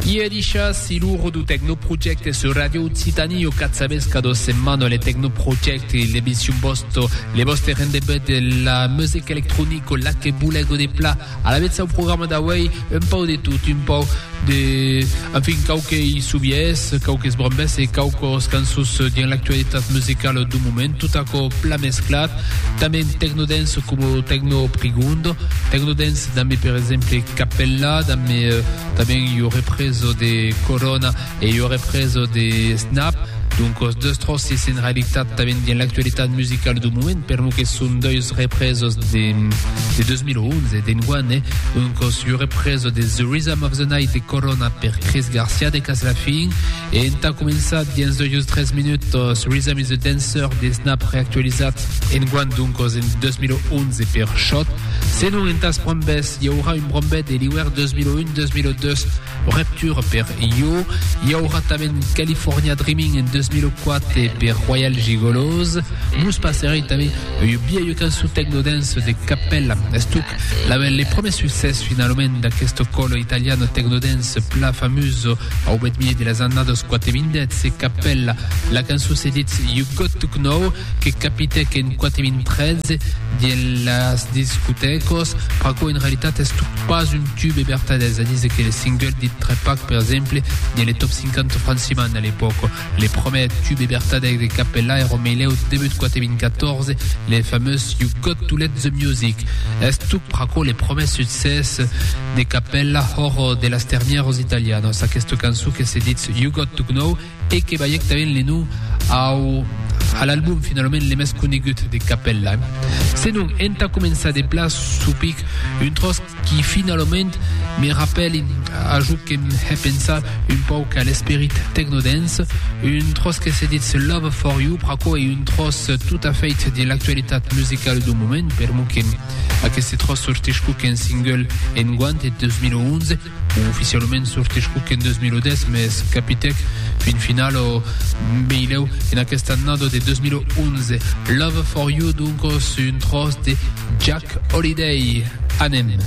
Ieu dishas e loro do Tecnoprojecte sur Radio Occitanie o cat sabes ca dos setmana le Tecnoprojecte il debissium bosto le boste rendebut de la music electronico la que bulego de pla a la vezza o programma d'auei un pau de tot un pau de en fin cau que i subies cau que sbrambes e cau cos cançons dins l'actualitat musicala do moment tot aquò pla mesclat tanben tecnodance como tecnoprigondo tecnodance Dambe per exemple Capella, dambe tanben ua represa de Corona e ua represa de Snap, donc es deus tròces en realitat tanben dins l'actualitat musicala dau moment, per lo que son deus represas de 2011, d'enguan, eh? Donc es ua represa de The Rhythm of the Night de Corona per Chris Garcia de Caslafin e entà començar dins deus tres minutas Rhythm is a Dancer de Snap reactualizat enguan, donc en 2011, per Shot. Senon entàs brombes, i aurà un brombet de l'iuèr 2001-2002, Repture per Io, i aurà tanben California Dreaming en 2004 per Royal Gigolos. Mos passerè tanben un biaio cançon techno-dance de Capella, estuc label le promès succès finalament d'aquesto colo italiano techno-dance plan famuso au bèth milieu de las annadas 2010, Capella, la cançon se ditz You Got To Kno. que capitèc en 4013 diel las discotècos, pr'aquò en realitat es tot pas un tube vertadèr, es a dire que le single dit Trepac per exemple diel le top 50 franciman a l'epòca. Le prumèr tube vertadèr de Capella èra au melèu debut 4014, le famós You Got To Let The Music. Es tot pr'aquò le prumèr succès de Capella hòr de las termièros italianos, aquesta cançon que se ditz You Got To Know, E que balhèc tanben le nom au a l'album finalament le mès conegut de Capella. Senon, entà començar de plan çò pic, un tròç qui finalament me rapèli a jo que m'he pensat un pauc a l'esperit tecnodance, un tròç que se ditz Love For You, pr'aquò ei un tròç tot a fait de l'actualitat musicala dau moment, per mon que aqueste tròç sortís quauqu'un single enguant, en 2011, Oficialament sortís Cook en 2010, mes capitèc fin final o Beilèu en aquesta annada de 2011. Love for You, donc, sus un tròç de Jack Holiday. Anem!